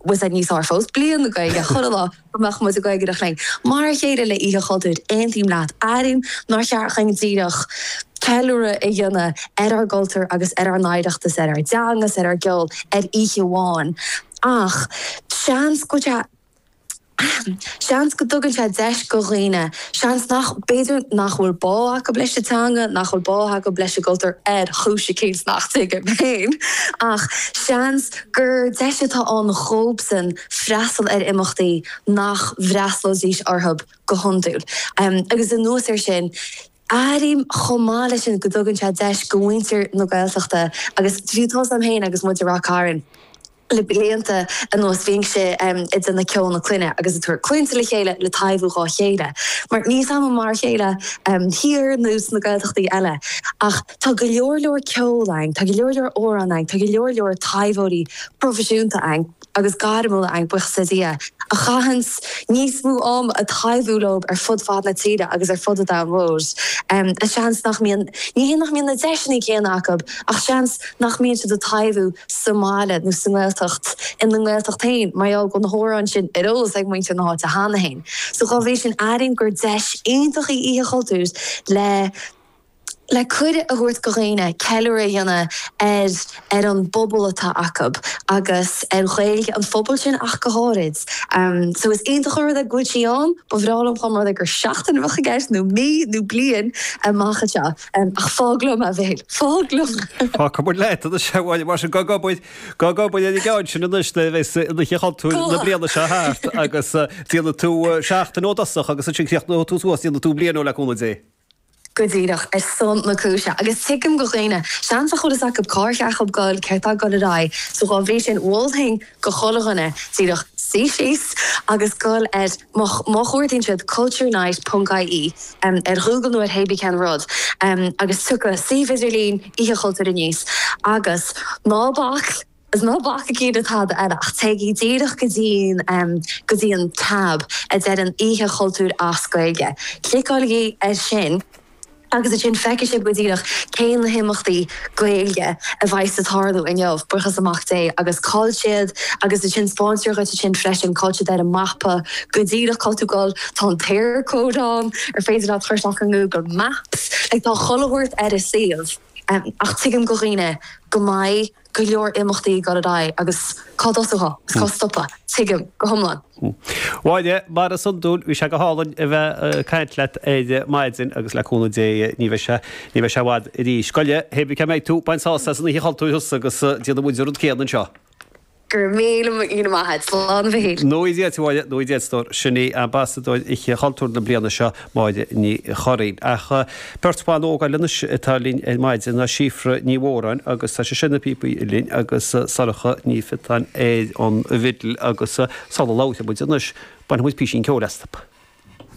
bhfuil siad níos fearr fós. Bliain na Gaeilge, chuile lá go mbeadh muid ag Gaeilgeoireacht linn. Mar a chéile le Oíche Chultúir, aontaím leat, airím nár cheart dhuinn díreach ceiliúradh a dhéanamh ar ár gcultúr agus ar ár n-oidhreachtas, ar ár dteanga 's ar ár gceol ar oíche amháin ach seans go Seans go dtugann sé deis go dhaoine, seans nach, b'fhéidir nach bhfuil bá acu leis an teanga, nach bhfuil bá acu leis an gcultúr ar chúis eicínt nach dtuigim féin, ach seans gur deis atá ann dhóbsan freastal ar imeachtaí nach bhfreastlóidís orthu go hiondúil. Agus anuas ar sin. Airím chomh maith leis sin go dtugann sé deis go mhuintir na Gaeltachta agus siúd 's muid ann féin agus muid i Ráth Cairn le blianta anuas bhíonn sé againn Ceol na Clainne agus ag tabhairt clainnte le chéile le taibhiú dhá chéile mar níl sé, am, mar a chéile thiar nó sna Gaeltachtaí eile ach tá go leor leor ceoil ann, tá go leor leor amhrán ann, tá go leor leor taibheoirí proifisiúnta ann. agus gairmiúla ann, buiochas le Dia, a chaitheanns níos mó am ag taibhiú leo ar fud fad na tíre agus ar fud an domhain mhóir. Seans nach mbíonn, ní hé nach mbíonn na deiseanna céanna acu, ach seans nach mbíonn siad ag taibhiú sa mbaile nó sa nGaeltacht, ina nGaeltacht féin, mar gheall go bhfuil na h-amhráin sin ar eolas ag muintir na h-áite cheana féin. So dhá bhrí sin airím gur deis iontach í Oíche Chultúir le. le cuireadh a thabhairt go dhaoine ceiliúradh a dhéanamh ar ar an bpobal atá acu agus ar Ghaeilge an phobail sin ach go háirid. So is iontach an rud é go bhfuil sí ann, ba bhreá liom dá mba rud é gur seachtain a bheadh i gceist, nó mí, nó bliain amach anseo, ach fág liom, a Mhichíl, fág liom! Tá go maith, leat anois, a Mháire, mar sin gabh ag obair, gabh ag obair ar an gceann sin anois nuair a bheas Oíche Chultúir na bliana seo thart agus déanfaidh tú seachtain dhó i dtosach agus ansin críochnóidh tú suas, déanfaidh tú bliain dhó le cúnamh Dé. go díreach ar son na cúise agus tuigim go dhaoine seans nach bhfuil fhios acu cá'r cheart dhóibh goil céard tá ag dul ar aghaidh so dhá bhrí sin mholfainn go chuile dhuine díreach suí síos agus dul ar má chuardaíonn siad culturenight.ie ar Ghoogle nó ar hé bí cén rud agus tiocfaidh suíomh idirlín Oíche Chultúir aníos agus ná bac Agus ná bacaigí le tada eile, ach téigí díreach go dtí an go dtí an tab a deir an Oíche Chultúir as Gaeilge. Cliceáiligí air sin agus ansin feicfidh sibh go díreach cé na himeachtaí Gaeilge a bheidheas ag tarlú inniu, buíochas le Mac Dé, agus cá'il siad. Agus ansin spáintear dhuit ansin freisin cá'il siad ar an mapa go díreach, cá'il tú goil. Tá an tEarcode ann ar féidir leat a chur isteach i nGoogle Maps. Like tá chuile shórt ar an suíomh. Ach tuigim go dhaoine go mbeidh. go leor imeachtaí ag dul ar aghaidh agus cá dtosófá agus cá stopfá, tuigim go hiomlán. Bhail, mar is iondúil, bhí sé go hálainn a bheith ag caint leat ar maidin agus le cúnamh Dé ní bheidh sé, ní bheidh sé i bhfad arís. Go leith, hébrí cá mbeidh tú, bain sás as an oíche chultúir thusa agus déanfaidh muid an rud céanna anseo. Go raibh míle míle maith a't. Slán Mhichíl. Nuair a d'fhéadfadh, Nuair a d'fhéadfadh, a stór. Sin í Ambasadóir Oíche Chultúir na bliana seo, Máire Ní Churraoin. Ach tá beirt bhan óg eile anois atá linn ar maidin, Síofra Ní Mhóráin agus tá sise ar na píobaí uilleann agus Sorcha Ní Phiotáin ar an bhfidil agus sula labhróidh muid anois bainfidh muid píosín ceoil astu.